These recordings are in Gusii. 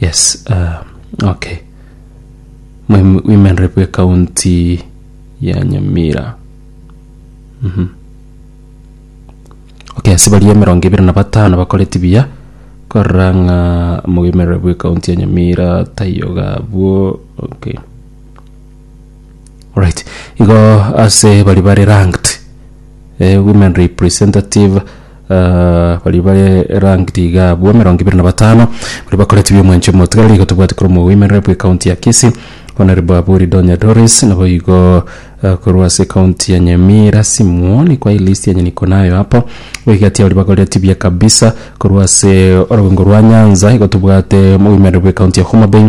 Yes, uh, okay. Mwen- Women Rep w'ekaunti ya Nyamira. Mhm. Okay, ase baria emerongo ebere na batano bakoreti buya korora ng'a mu Women Rep w'ekaunti ya Nyamira taiyo gabwo. Okay. Alright, igo ase bari bare ranked eh, women representative ah, bari bare ranked iga abwo emerongo ibere na batano bari bakoreti biomwancho omotigareri igo tobwati korwa omo women rep ekaunti ya Kisii Honorable Aburi Donya Doris nabo igo ah, korwa ase ekaunti ya Nyamira Simwoni kwa elist yanye niko nayo apo igo egati abari bakoreti buya kabisa korwa ase orogongo rwa Nyanza igo tobwate omo women rep ekaunti ya Homa Bay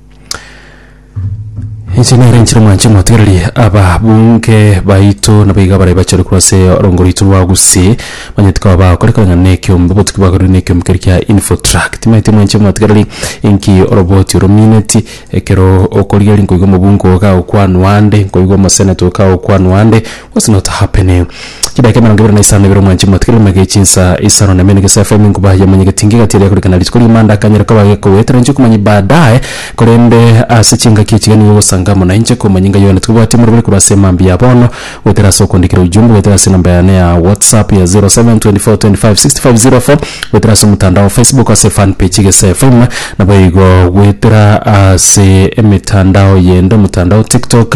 Inche nere inchire mwanche motigererie ababunge baito nabo iga bare bachore korwa ase orongo rwaito rwa Gusii, manyete koba bagokora ekereng'ana na ekeombe botuki bwakorire na ekeombe kere kia Infotrak. Timanyeti mwanche motigererie inki oroboti oro omineti, ekero okorigereria nkoigwa omobunge ogo kagokwanwa ande, nkoigwa omoseneto oyo kagokwanwa ande, was not happening. Chidaeka emerongo ebere na isano na ibere omwanchimi mwatigere emege ya chinsa isano na emene gese FM inkuba yamanyegeti inga egati eria korikana rituko ri'Imanda akanyare koba gekogoetera inche okomanya baadaye korende ase chingaki echi iga nigo ogosanga amo nainche komanya ng'a Yohana tokobwati omoroberi korwa ase emambia ya bono goetera ase okoondikera ujumbe goetera ase enamba yane ya WhatsApp ya 0724256504 goetera ase omotandao wa Facebook ase fan page gese FM naboigo goetera ase emetandao yende omotandao TikTok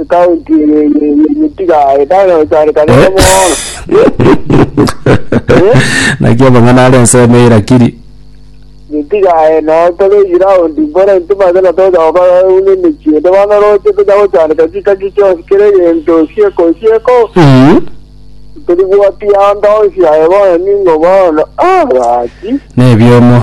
Ekaunti eye ye- ye- yetiga etano esarekane Eh? nomono. naki amang'ana are ensemo erakiri Yetiga eno tore ground mbore ntimate na toja gokora une emechie ende bono roche toja gochareka chikaki chionsi kere egento osieko osieko. Mhm. Teri bwati ando onsi aye bono ningo bono. Ah, bwati. na ebiomo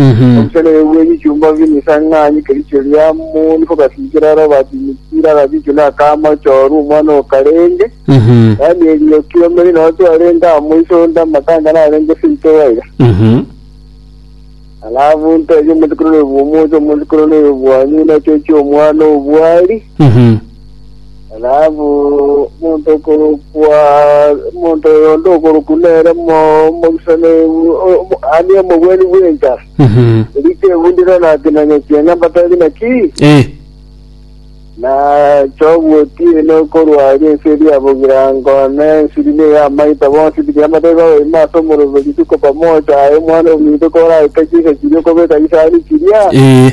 Omusenene bw'ebichumba bimesang'ani kericho ria moni kogasiikera aro Bati-Mikiri, agasiikwa n'akaama Choru, omwana o Karenge, yaani erioki omeri nonya twarenge amo iso onde amatanga narenge seito baiga. Alafu nteebie omosikore oyo bw'omochie, omosikore oyo bwanywe, nachochie omwana o bwari, Rahabu, omonto okorokwa, omonto oyo onde okorokwa nere mo- omogisani o- omo- ani omogweri bw'enka, Mhm. erio kegundire nakinanya kianga mbatari naki, Eh. na chogotiina okorwa aria ense eria bogirango, na ensiri ne y'amaita bonsi biria mbatari babaima ase omoroberi rituko pamoja, aye omwana ominto koraeta chisa chiria okobeka chisani chiria, Eh.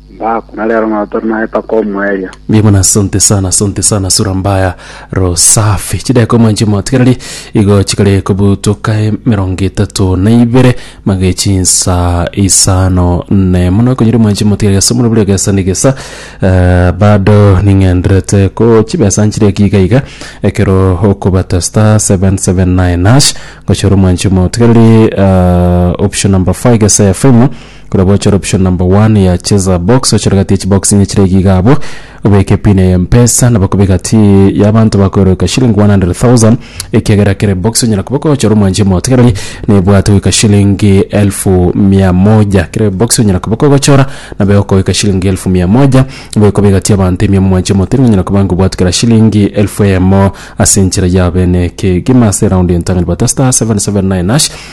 Mbaku, na rero nao tore naye mpaka omoerio. Mbuya mono asante sana asante sana sura mbaya ro safi chideko mwanche motigereri igo chikare kobutoka emerongo etato na ibere mage chinsa isano nemo nokonyiri mwanche motigereri ase omoro buri egesa na egesa eh, bado ning'enderete ko chibesa nchire eki iga iga ekero okobata star 779 hash gochora omwanche motigereri eh, option number 5 gesa ya fm Korwa gochora option number one ya cheza box ochore gati echibox enye chire iga iga abwo obeke pin ya mpesa nabo kobe gati yabanto bakoeroka shilling 100,000 ekiagera kere box onyara koba okochora omwanchi omotegereri nebwate goika shilingi elfu mia moja kere box onyara koba okogochora nabo egokogoika shilingi elfu mia moja nabo ekoba egati yabanto emiya omwanchi omotegereri onyara koba ng'a obwate kera shilingi elfu eyemo ase enchera yabene kegima ase eround entang'ani bata star 779 hash